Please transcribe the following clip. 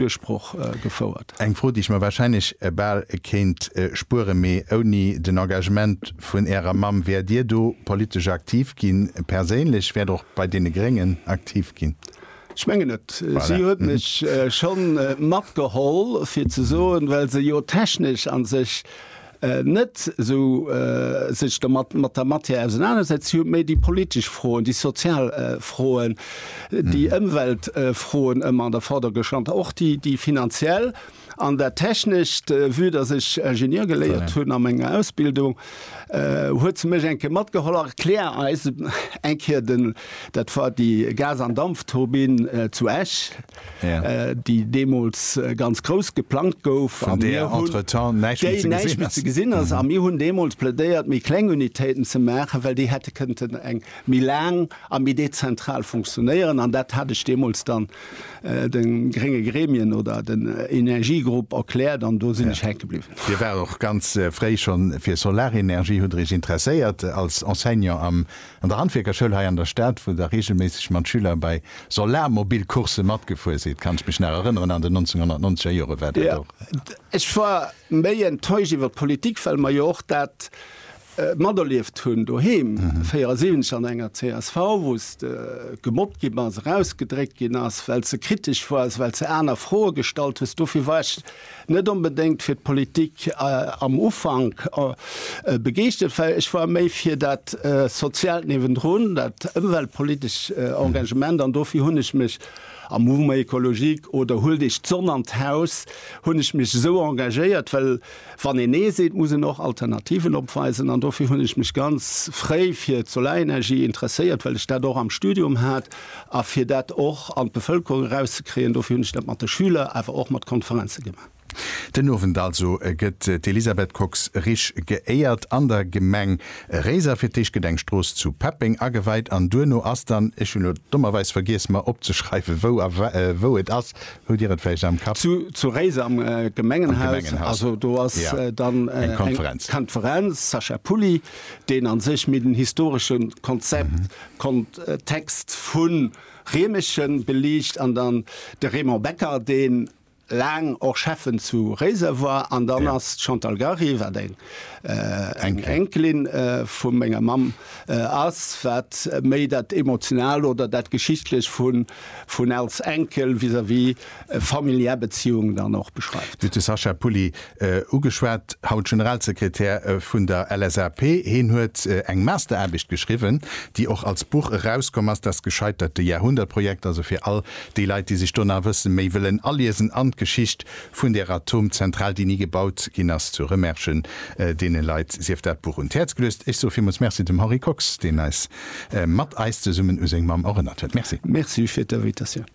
Duerchbroch gefouert. Eng Fro, déi ech mer wahrscheinlech bal kéint spueren, mee ouni den Engagement vun Ärer Mamm, wäert Dir do politesch aktiv ginn, perséinlech? Wäert och bei deene Gréngen aktiv ginn? Ech mengen net. Si huet mech scho matgeholl, fir ze soen, well se jo technesch a sech net esou sech domat mat der Matière ausenanersetzt. Si huet méi déi politesch Froen, déi sozial Froen, déi Ëmweltfroen ëmmer an der Vorder gestanden, och déi déi finanziell an dat Technescht. Vue dass ech Ingenieur geléiert hunn a menger Ausbildung, huet se mech eng Kéier matgeholl. Erklär eis eng Kéier den, dat war déi Gas an Dampfturbine zu Esch, déi deemools ganz grouss geplangt gouf, an där entretemps näischt méi ze gesinn ass, déi näischt méi ze gesinn ass. A mir hunn deemools plädéiert, méi kleng Unitéiten ze maachen, well déi hätte kënnten eng méi laang a méi dezentral funktionéieren. An dat hat ech deemools dann de grénge Gremien oder den Energiegrupp erkläert, an do sinn ech hänke bliwwen. Dir waart och ganz fréi schonn fir Solarenergie, hutt Der Iech interesséiert als Enseignant am An der Handwierkerschoul hei an der Stad, wou Der reegelméisseg mat Schüler bei Solarmobilcoursë matgefuer sidd, kann ech mech nach erënneren, an den 1990 er Jore war dat och. Ech war méi enttäuscht iwwer d'Politik, well mer jo och dat materlieft hunn doheem, 74 an enger csv, wou se gemobbt gi bass, erausgedréckt ginn ass, well se kritesch woars, well se aner Froe gestallt hues. Dofir war ech Net onbedéngt fir d'Politik am Ufank begeeschtert war. Ech war méi fir dat Soziaalt niewendrun, dat ëmweltpolitescht Engagement. An dofir hunn ech mech am Mouvement Ecologique oder Huel Dech d'Sonn an d'Haus hunn ech mech esou engagéiert. Well wann een Nee seet, muss en och Alternativen opweisen. An dofir hunn ech mech ganz fréi fir d'Solarenergie interesséiert, well ech dat och am Studium hat. A fir dat och an d'Bevëlkerung erauszekréien, dofir hunn ech dat mat de Schüler, awer och mat Konferenze gemaach. Den Owend also gëtt d'Elisabeth Kox-Risch geéiert an der Gemeng Réiser. Fir d'éischt gëtt eng Strooss zu Peppeng ageweit an duerno ass dann, ech hunn elo dommerweis vergiess mer opzeschreiwen, wou a wou et ass, hutt Dir et vläicht am Kapp? Zu Réiser am Gemengenhaus. Also do ass dann eng Konferenz. Sacha Pulli, deen a sech méi den historesche Konzept Kontext vu Riemerschen beliicht an dann de Raymond Becker, dee laang och Schäffen zu Réiser war. An dann ass d'Chantal Gary, wat eng Enkelin vu menger Mamm ass, wat méi dat Emotionalt oder dat Geschichtlech vun als Enkel vis-à-vis familiär Beziehungen dann och beschreift. Du hues de Sacha Pulli ugeschwat, haut Generalsekretär vun der LSAP. Heen huet eng Masteraarbecht geschriwwen, déi och als Buch erauskomm ass, Das gescheiterte Jahrhundertprojekt, also fir all déi Leit, déi sech do nach e bësse méi wëllen aliesen an d'Geschicht vun där Atomzentral, déi ni gebaut ginn ass zu Remerschen. Deene Leit sief dat Buch un d'Häerz geluecht. Ech soe villmools Merci dem Henri Kox, deen eis mat eis zesummen u seng Mamm erënnert huet. Merci. Merci fir d'Invitatioun.